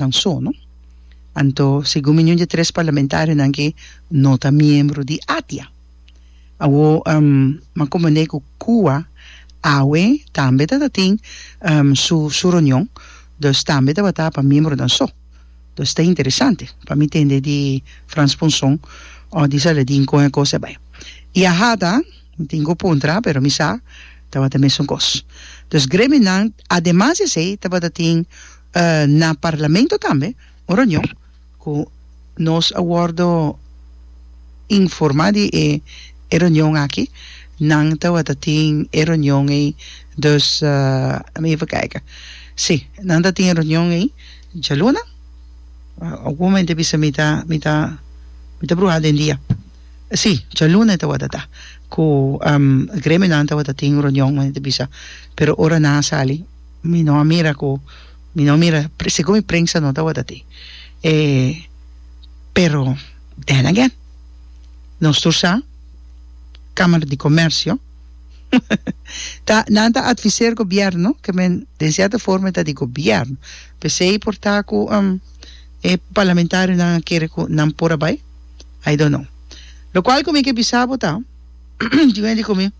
nan so no anto segun mi ñundi tres parlamentarionan ke no ta miembro di ATIA awo m'a komprendé ku Cuba awe tambe ta ta tin su su reunion dus tambe tabata pa miembronan so dus ta interesante pa mi tende di Frans Ponson o di Saladin kon e kos ta bai i a hada mi tin ku puntra pero mi sa tabata mesun kos dus gremionan ademas di esei tabata tin Na Parlamento tambe un reunion cu nos a wordo informa di e reunion aki, nan tabata tin e reunion ey dus lami even kijk, si nan ta tin e reunion ey djalunan, algun mente bisa mi ta mi ta mi ta bruha den dia, si djalunan tabata ta cu gremionan tabata tin reunion nan ta bisa pero ora nan a sali. Mi no a mira cu, mi no a mira, segun mi prensa no tawata ti. E, pero, then again, nos tur sa, Camara di Comercio, ta, nan ta adviser gobierno, ke men den cierta forma ta di gobierno, pesey por ta cu e parlamentarionan a kere cu nan por a bay? I don't know. Locual cu mi ke bisa bo ta, di wen di cu mi,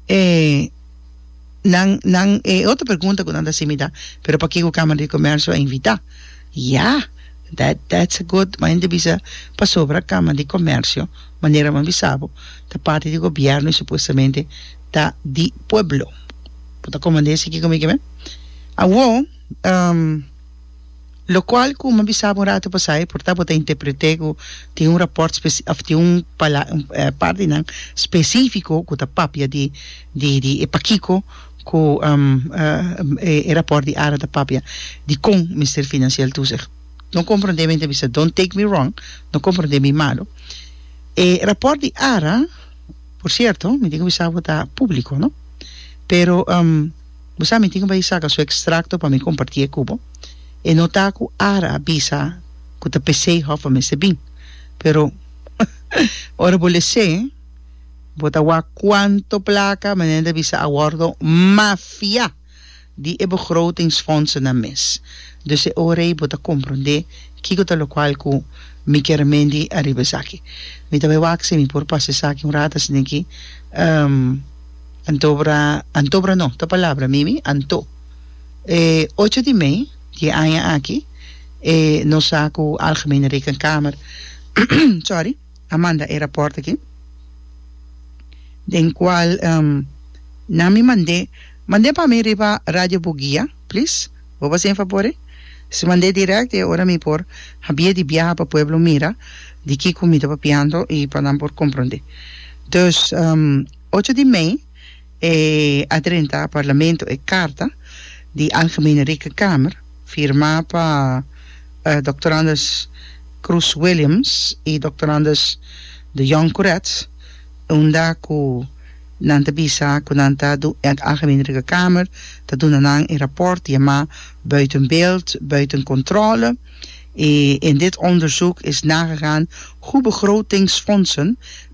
eh, nan, nan, e otro pregunta cu nan ta simi ta, pero pakico e Camara di Comercio a invita? Ya, that, that's a good, ma hende bisa, pasobra Camara di Comercio, manera bo a bisa bo, ta parti di Gobierno y supuestamente ta di pueblo. Bo ta comende esaki conmigo, awe? Um. Locual, cu mi a bisaba un rato pasai, por ta bo ta interpreté cu tin un rapport speci-, of tin un pala-, un par di nan specifico cu ta papia di, di, di e pakico cu e rapport di ara ta papia dicon Mister Financiel Toezicht no comprende mi ta bisa, don't take me wrong, no comprende mi malo. E rapport di ara, por cierto, mi tin cu bisa bo ta publico, no? Pero. Bo sa mi tin bai saca su extracto pa mi comparti e cu bo. E no ta cu Ara a bisa cu ta pesey hof bo mester bin. Pero ora bo lece, bo ta wak cuanto placa manera ta bisa a wordo mafia di e begrotingsfondsennan mes. Dus e ora ey bo ta comprende kico ta locual cu mi kier mendi ariba esaki. Mi ta bai wak si mi por pasa esaki un rato asina aki. Antobra, antobra no, ta palabra mimi, anto. E ocho di mei di e aña aki, e nos sa cu Algemene Rekenkamer, sorry, a manda e raport aki, den cual nan mi mand'é, mand'é pa mi riba Radio Bugia, please, bo basa e fabor e? Si mand'é direct e ora mi por habia di biaha pa pueblo mira di kico mi ta papiando y pa nan por comprende. Dus. Ocho di mei e a drenta Parlamento e karta di Algemene Rekenkamer, firmá pa Dòkter Anders Croes Williams i Dòkter Anders de Jong Couretz, unda ku nan ta bisa ku nan ta e Algemene Rekenkamer ta duna nan e rapòrt yamá buiten beeld, buiten controle e in dit onderzoek is nagegaan hoe begrotingsfondsen,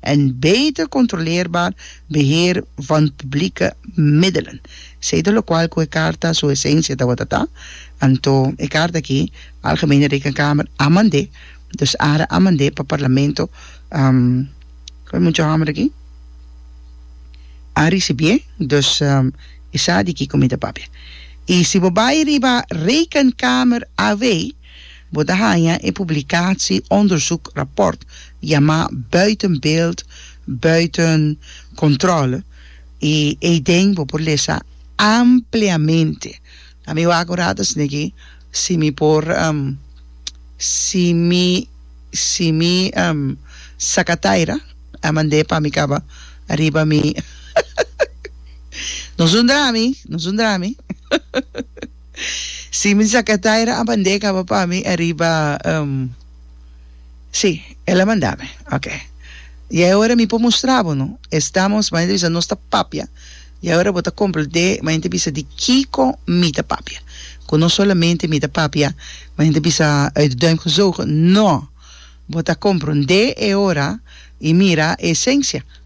en beter controleerbaar beheer van publieke middelen, zeta locual cu e carta su esencia tabata ta, anto e carta aki Algemene Rekenkamer a mandé, dus ara a mandé pa Parlamento, cu e mucha homber aki a ricibié, dus e sa di kico mi ta papia. Y si bo bay riba Rekenkamer AV. Bo ta haña e publikatie onderzoek rapport yamá Buiten beeld, buiten controle i eyden bo por lesa ampliamente. Ta mi wak un rato esnan aki si mi por si mi si mi saka taira a mand'é pa mi kaba riba mi no es un drami no es un drami. Si mi sa ke Taira a bandé kaba pa mi ariba um si el a manda mi ok y ahora mi por mustra bo no estamos maya ta bisa nos ta papia y ahora bo ta complete maya ta bisa di kiko mi ta papia ku no solamente mi ta papia maya ta bisa uit de duim gezogen no bo ta compronde e ora y mira e esencia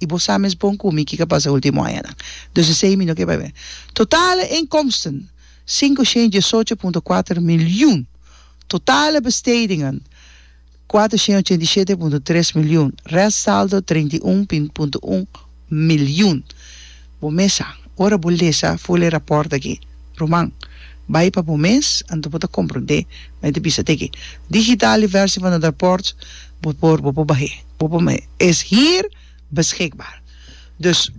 I bo sa mes bon ku mi kiko a pasa e último añanan. Dus i sei mi no ke bai bini. Totale inkomsten, sinkushent diesocho punto kuater milyun. Totale bestedingen, kuatershent ochenta i shete punto tres milyun. Rèstsaldo, treinta i un punto un milyun. Bo mes sa, ora bo lesa ful e rapòrt aki, ruman, bai pa bo mes, anto bo ta komprondé. Mi ta bisa te aki, Digitale versie van het rapport, bo por, bo por bah'é. Popa mi es hier beschikbaar. Dus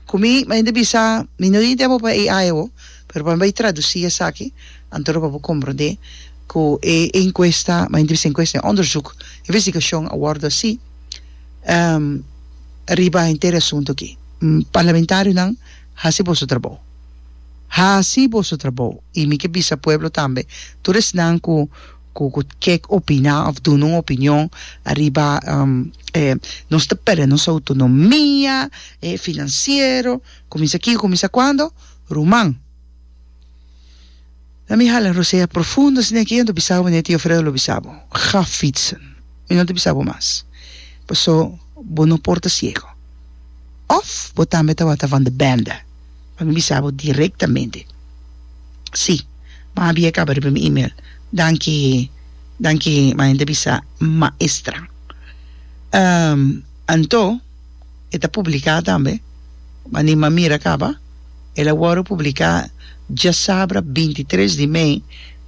ku mi a hende bisa mi no idea popa e ai awo, pero pa mi bai tradusi esaki, anto pa bo komprondé ku e enkuesta, mi a hende bisa enkuesta, e onderzoek, investigashon a wòrdu hasi riba henter e asuntu aki. Parlamentarionan, hasi boso trabou. Hasi boso trabou. I mi ke bisa pueblo tambe, tur esnan ku. cu cu kek opina of duna un opinion ariba e nos ta perde nos autonomia e financiero cuminsa aki cuminsa cuando ruman na mi hala rosea profundo asina aki anto bisa bo tio Fredo lo bisa bo ga fitsen mi no ta bisa bo mas pasobra bo no por ta ciego of bo tambe tawata van de bende. pa mi bisa bo direktamente. Sí, bo a bia e kaba riba mi email. Danki, danki Mayen ta bisa maestra. Anto e ta publiká tambe, mani m'a mira kaba, el a wòrdu publiká djasabra binti tres di mei,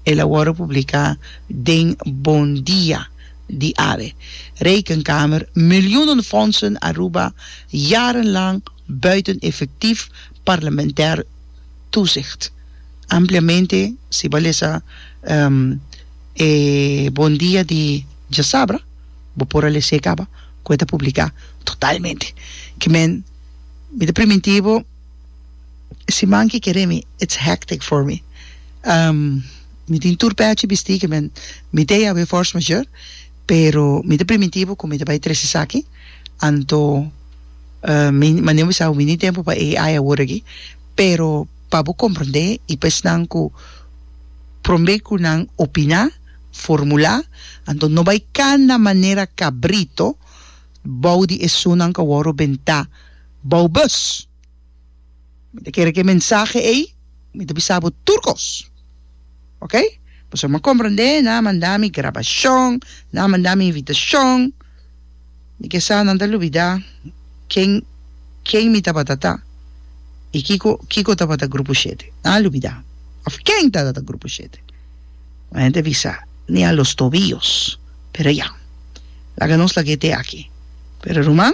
el a wòrdu publiká den Bon Dia di Awe. Rekenkamer, Miljoenen fondsen Aruba, jarenlang. buiten efectief parlamentair toezicht. Ampliamente si bo a lesa e Bon Dia di Djasabra bo por a lese caba cu e ta publica totalmente. Ki men, mi ta priminti bo, e siman ki kere mi it's hectic for me. Mi tin tur pechi bisti ki men mi ta e awe force majeure pero mi ta priminti bo cu mi ta bay trece esaki. Anto mi no bisa wini tempo pa AI awor aki pero pa bo comprende y pa esnan cu prombe cu nan opina, formula, anto no bay cana manera cabrito bou di esunnan cu a wor benta bou bus. Mi ta kere ku e mensahe ei mi ta bisa bo tur kos, ok? Pasobra mi a komprendé nan a manda mi grabashon, nan a manda mi invitashon, mi ke sa nan ta lubidá ken ken mi tabata ta i kiko kiko tabata Grupo Shete. Nan a lubidá òf ken tabata Grupo Shete. Un hende a bisa, Ni a los tobillos. Pero ya, laga nos lag'é te aki. Pero ruman.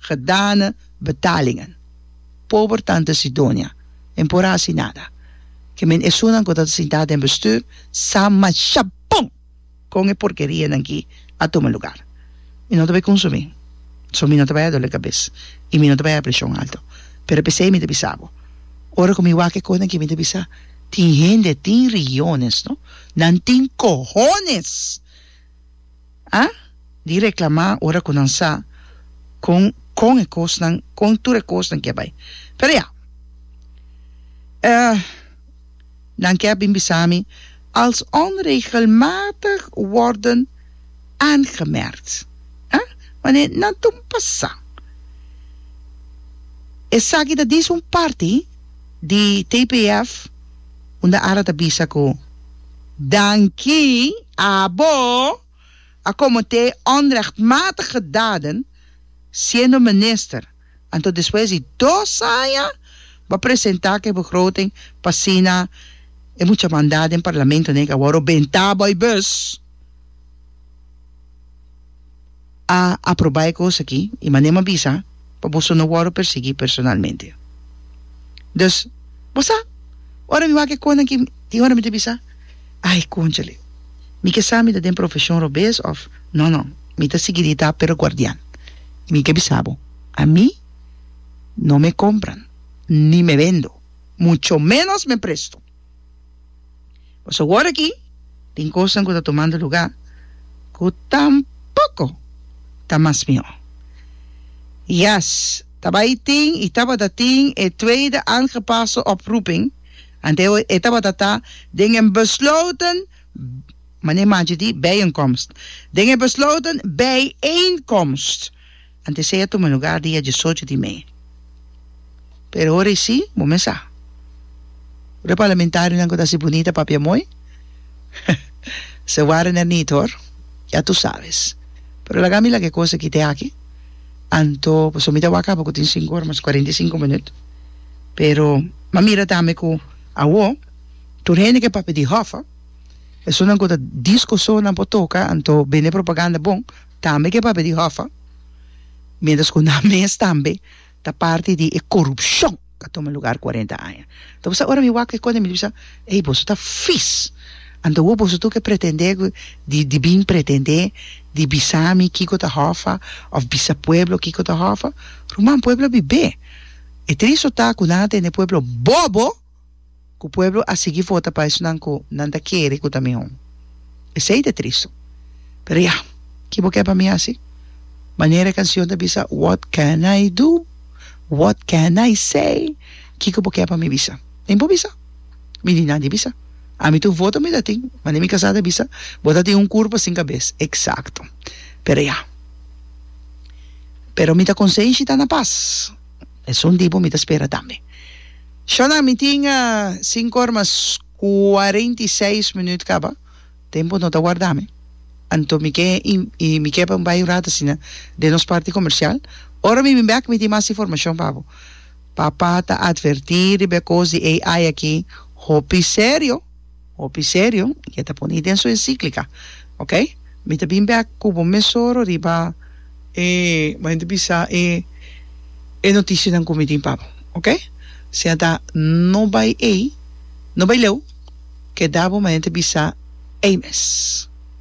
gedane betalingen pober tante Sidonia men por hasi nada ke men esunnan ku ta sintá den bestuur sa mashapon kon e porkerianan ki a tuma lugar mi no ta bai konsumí so mi no ta bai a dole kabes i mi no ta bai a preshon alto pero pesei mi ta bisa bo ora ku mi wak e kosnan ke mi ta bisa tin hende tin regiones no nan tin kohones a di reclamá ora cu nan sa con con e cosnan, con tur e cosnan ke bai. Pero ya, eh, nan ke a bin bisa mi, als onregelmatig worden aangemerkt, ah, wanneer e nan tun pasa. Esaki ta dies un parti di TPF. unda Ara ta bisa ku, Danki abo, a komete onrechtmatige daden siendo minister, anto despues di dos aña bo a presenta ke begroting pa asina e mucha manda den parlamento nega wou ro benta bo e bus. a aprobá e kos akí i mand'é ma bisa pa boso no wòrdu persiguí personalmente. Dus, bo sa, ora mi wak e kosnan akí, tin ora mi ta bisa, Ai, kònchale, mi ke sa mi ta den profeshon robes òf nò, nò, mi ta siguirí ta pero guardian. I mi ke bisa bo, ami no me kompran, ni me bendo, mucho ménos me presto. Pues awor aki tin cosnan cu ta tomando lugar cu tampoco ta mas mihó. Yes, ta bay tin y tabata tin e tweede aangepaste oproeping, antewoord e tabata ta den een besloten manera manchi di bijeenkomst, den een besloten bijeenkomst. Antes ey a tuma lugar dia diesocho di mei. Pero ora ey si, bo mes sa. Ora e parlamentarionan cu ta haci bunita papia mooi, se wara na nit hoor, ya tu sabes. Pero laga mi laga e cosa kite aki, anto pasobra mi ta wak caba cu tin cinco ora mas cuarenta y cinco minuut. Pero m'a mira tambe cu awo tur hende cu e papia di hòffa, esunnan cu ta discoso nan por toca, anto bende propaganda bon. tambe ku e papia di Hoffa, miéntras ku nan mes tambe ta parti di e korupshon ku a tuma lugar kuarenta aña. Entonces, ora mi wak e kos mi ta bisa, ey, boso ta vis, anto wou boso tur ke pretendé ku di di bin pretendé di bisa mi kiko ta Hoffa òf bisa pueblo kiko ta Hoffa? Ruman, pueblo a bibé. E triste ta ku nan a tende pueblo bòbò. ku pueblo a sigui vota pa esnan ku nan ta kere ku ta mihó. Esei ta tristu. Pero ya, ki bo ke pa mi hasi? Manera e kansion ta bisa, What can I do? What can I say? Kiko bo ke pa mi bisa? Nin bo bisa. Mi di nadi bisa. Ami tur voto mi ta tin. Mane mi kasá ta bisa, Bo ta tin un kurpa sin kabes. Eksakto. Pero ya. Pero mi ta konsenshi ta na pas. Esun tipo mi ta spera tambe. Shona, Mi tin sinku or mas kuarenta i seis minüt kaba. Tempu no ta warda mi. Anto mi ke mi ke pa mi bai un rat asina den nos parti komersial. Ora mi bin bek mi tin mas informashon pa bo. Papa ta atvertí riba e kos di AI aki hopi serio. Hopi serio y e ta pone den su enciclica, ok, mi ta bin bek cu bo mesoro riba. E manda bisa e e noticianan cu mi tin pa bo, ok, sea ta no bay ey, no bay leu, keda bo manda ta bisa ey mes.